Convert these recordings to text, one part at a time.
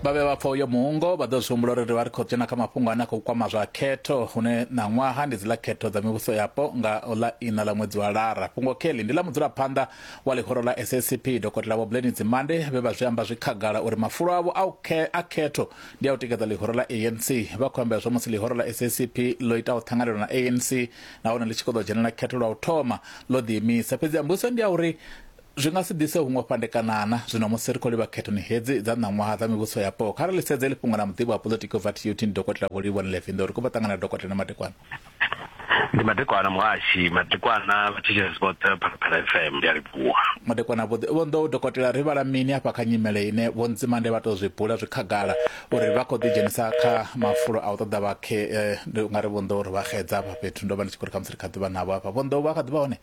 vha vhe vhapfa uyo muungo vha ḓo zwi humbula uri ri vha ri khou dzhena kha mafhungo ane a khou kwama zwa khetho hune ṋaṅwaha ndi dzi ḽa khetho dza mivhuso yapo nga ḽa ina ḽa ṅwedzi wa lara fhungo kelly ndi ḽa mudzulaphanḓa wa ḽihoro ḽa ssp dokotela vho bleni dzimande vhe vha zwi amba zwi khagala uri mafulo avho a khetho ndi a u tikedza ḽihoro ḽa anc vha khou ambela zwa musi ḽihoro ḽa ssp ḽo itaho ṱhanganelo na anc nahone ḽi tshi khou ḓo dzhenela khetho lwa u thoma ḽo ḓiimisa fhedzi ambuso ndi ya uri Zwi nga si ḓise huṅwe fhandekanana zwino musi ri khou livha khethoni hedzi dza ṋaṅwaha dza mivhuso yapo. Kha ri ḽi sedze heḽi fhungo na muḓivhi wa poḽotiki u bva TUT ndi Dokotela Vho Livhuwa Nlevi Nḓou. Ri khou bva ṱangana na Dokotela Madekwana. Ndi Madekwana muhashi, Madekwana vhathetshelesi vhoṱhe vha Phalaphala FM ndi a livhuwa. Madekwana Vho Vho Nḓou, Dokotela ri vhala mini afha kha nyimele ine Vho Nzimande vha tou zwi bula zwi khagala uri vha khou ḓi dzhenisa kha mafulo a u ṱoḓa vhakhe ndi nga ri Vho Nḓou ri vha xedza afha fhethu ndo vha ndi tshi khou ri khamusi ri kha ḓi vha navho afha Vho Nḓou vha kha ḓi vha hone?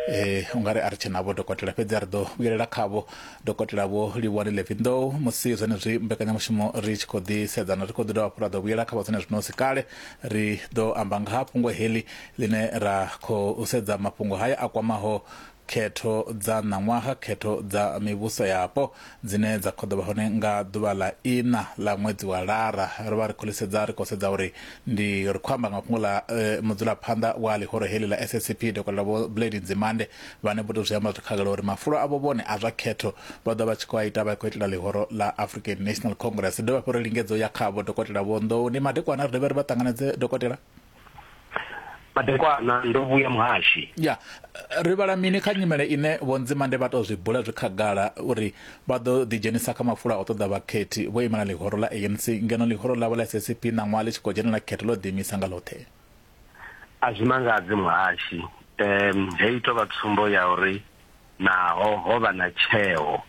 eh ungari a ri tshe navho dokotela fhedzi a ri ḓo vhuyelela khavho dokotela vho livhuwani levindow musi zwenezwi mbekanyamushumo ri tshi khou ḓi sedzana ri khou ḓi dovha hafhu ra ḓo vhuyela kha vhadzone zwino si kale ri ḓo amba nga ha fhungo heḽi ḽine ra khou sedza mafhungo haya a kwamaho khetho dza ṋaṅwaha khetho dza mivhuso yapo dzine dza khoḓo vha hone nga ḓuvha ḽa iṋa ḽa ṅwedzi wa lara ro vha ri khou ḽisedza ri khou sedza uri ndi ri khou amba nga fhungo ḽa eh, mudzulaphanḓa wa ḽihoro heḽi ḽa SACP dokotela vho Blade Nzimande vhane vho tou zwi amba zwi khagala uri mafulo avho vhone a zwa khetho vha ḓo vha tshi khou a ita vha khou itela ḽihoro ḽa African National Congress dovha fhuri lingedzo ya khavho dokotela vho Nḓouni madekwana ri dovhe ri vha ṱanganedze dokotela madekwana ndo vhuya muhashi ya ri vhala mini kha nyimele ine vho nzimande vha tou zwi bula zwi khagala uri vha ḓo ḓidzhenisa kha mafula o ṱoḓa vhakhethi vho imela ḽihoro ḽa anc ngeno ḽihoro ḽavho ḽa ssp ṋaṅwaha ḽi tshi khou dzhenela khetho ḽo ḓiimisa nga ḽoṱhe a zwi mangadzi muhashi um heyi tou vha tsumbo ya uri naho ho vha na tsheo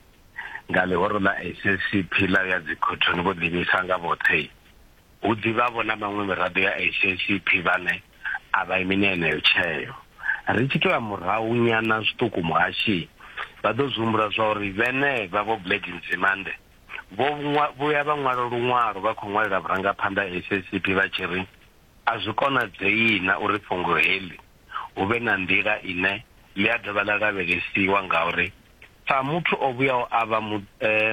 nga ḽihoro ḽa ssp ḽa ya dzikhothoni vho ḓiimisa nga vhoṱhe Hu ḓi vha-vho na maṅwe miraḓo ya SACP vhane a vha imi na yeneyo tsheo. Ri tshi tou ya murahu nyana zwiṱuku muhashi vha ḓo zwi humbula zwa uri vhenevha Vho Blade Nzimande vho vhuya vha ṅwala luṅwalo vha khou ṅwalela vhurangaphanḓa ha SACP vha tshi ri a zwi konadzeina uri fhungo heḽi hu vhe na nḓila ine ḽi a dovha ḽa lavhelesiwa ngauri Sa muthu o vhuyaho a vha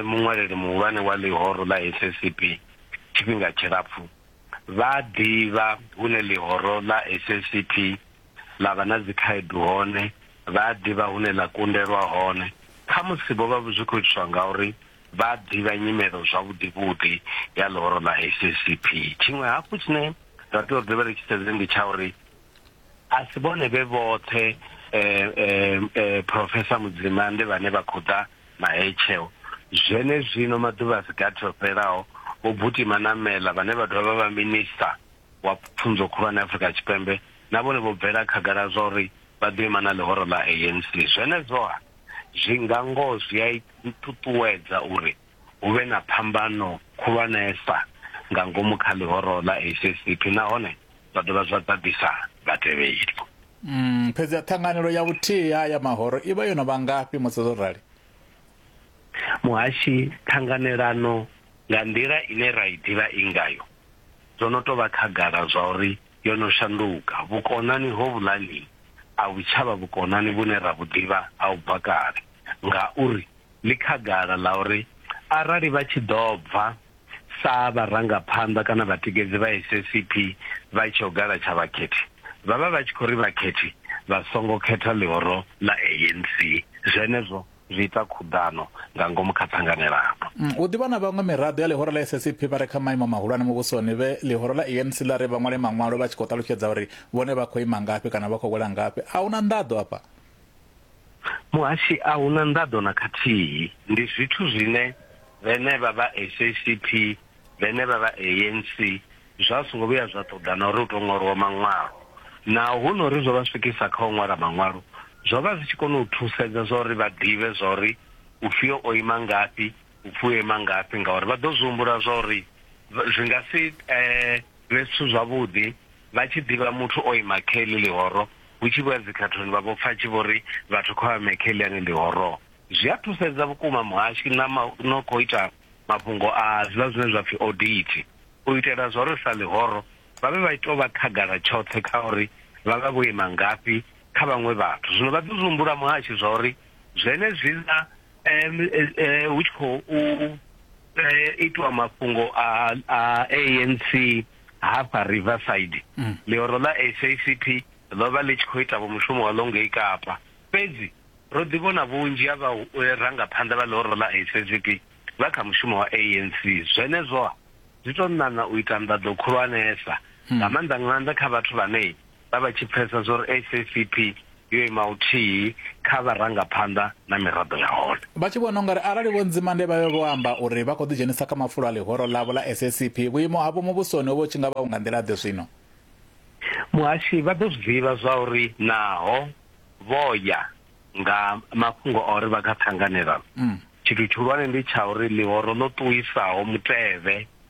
muṅwaleli muhulwane wa ḽihoro ḽa SSCP tshifhinga tshilapfu, vha a ḓivha hune ḽihoro ḽa SSCP ḽa vha na dzikhaedu hone, vha a ḓivha hune ḽa kundelwa hone. Khamusi vho vha zwi khou itiswa ngauri vha a ḓivha nyimelo zwavhuḓivhuḓi ya ḽihoro ḽa SSCP. Tshiṅwe hafhu tshine ra tea uri ri vhe ri tshi sedze ndi tsha uri a si vhone vhe vhoṱhe eh, eh, eh, profesa mudzimande vhane vha khou ḓa mahetshewo zwene zwino maḓuvha a si gathi o fhelaho vho butima na mela vhane vha dovha vha vha minista wa pfunzo khulwane afrika tshipembe na vhone vho bvela khagala zwa uri vha ḓo ima na ḽihoro ḽa anc zwenezwoha zwi nga ngoho zwi a i ṱuṱuwedza uri hu vhe na phambano khulwanesa nga ngomu kha ḽihoro ḽa SACP nahone zwa dovha zwa ḓaḓisa vhatevheli. Mm, fhedzi ha ṱhanganelo ya vhuthihi ha ya mahoro i vha yo no vha ngafhi musi zwo rali? Muhashi, ṱhanganelano nga nḓila ine ra i ḓivha i ngayo zwo no tou vha khagala zwa uri yo no shanduka. Vhukonani hovhuḽani a vhu tsha vha vhukonani vhune ra vhu ḓivha ha u bva kale ngauri ḽi khagala ḽa uri arali vha tshi ḓo bva sa vharangaphanḓa kana vhatikedzi vha SACP vha tshi ogala tsha vhakhethi, vha vha vha tshi khou ri vhakhethi vha songo khetha ḽihoro ḽa ANC. Zwenezwo zwi ita khuḓano nga ngomu kha ṱhanganelano. Hu ḓi vha na vhaṅwe miraḓo ya ḽihoro ḽa SACP vha re kha maimo mahulwane muvhusoni vhe ḽihoro ḽa ANC ḽa ri vha ṅwale maṅwalo vha tshi khou ṱalutshedza uri vhone vha khou ima ngafhi kana vha khou wela ngafhi. A hu na nḓaḓo afha. Muhashi, a hu na nḓaḓo na khathihi. Ndi zwithu zwine vhenevha vha SACP, vhenevha vha ANC zwa songo vhuya zwa ṱoḓa na uri hu tou ṅwalwa maṅwalo. Naho hu no ri zwo vha swikisa kha u ṅwala maṅwalo, zwo vha zwi tshi kona u thusedza zwa uri vha ḓivhe zwa uri ufhio o ima ngafhi, ufhio o ima ngafhi ngauri vha ḓo zwi humbula zwa uri zwi nga si vhe zwithu zwavhuḓi vha tshi ḓivha muthu o ima kha heḽi ḽihoro Hu tshi vhuya dzikhathoni vha vho pfa a tshi vho ri vhathu kha vha mekhe ḽiani ḽi horoo. Zwi a thusedza vhukuma muhashi na no khou ita mafhungo a zwiḽa zwine zwa pfi odithi u itela zwa uri sa ḽihoro vha vhe vha tshi tou vha khagala tshoṱhe kha uri vha vha vho ima ngafhi kha vhaṅwe vhathu. Zwino vha ḓi zwi humbula muhashi zwa uri zwenezwiḽa hu tshi khou itiwa mafhungo a ANC, Hafha Riverside, ḽihoro ḽa SACP ḽo vha ḽi tshi khou itavho mushumo waḽo ngei Kapa. Fhedzi ro ḓivhona vhunzhi ha vharangaphanḓa vha ḽihoro ḽa SACP vha kha mushumo wa ANC. Zwenezwo-ha zwi tou ṋaṋa u ita nḓaḓo khulwanesa, nga maanḓa-maanḓa kha vhathu vhane vha vha tshi pfesa zwori SACP yo ima uthihi kha vharangaphanḓa na miraḓo ya hone. Vha tshi vhona ungari arali Vho Nzimande vha vhe vho amba uri vha khou ḓi dzhenisa kha mafulo a ḽihoro ḽavho ḽa SACP, vhuimo havho muvhusoni hovho tshi nga vha vhu nga nḓila ḓe zwino? Muhashi vha ḓo zwi ḓivha zwauri naho vho ya nga mafhungo a uri vha kha ṱhanganelano, tshithu tshihulwane ndi tsha uri ḽihoro ḽo ṱuwisaho mutevhe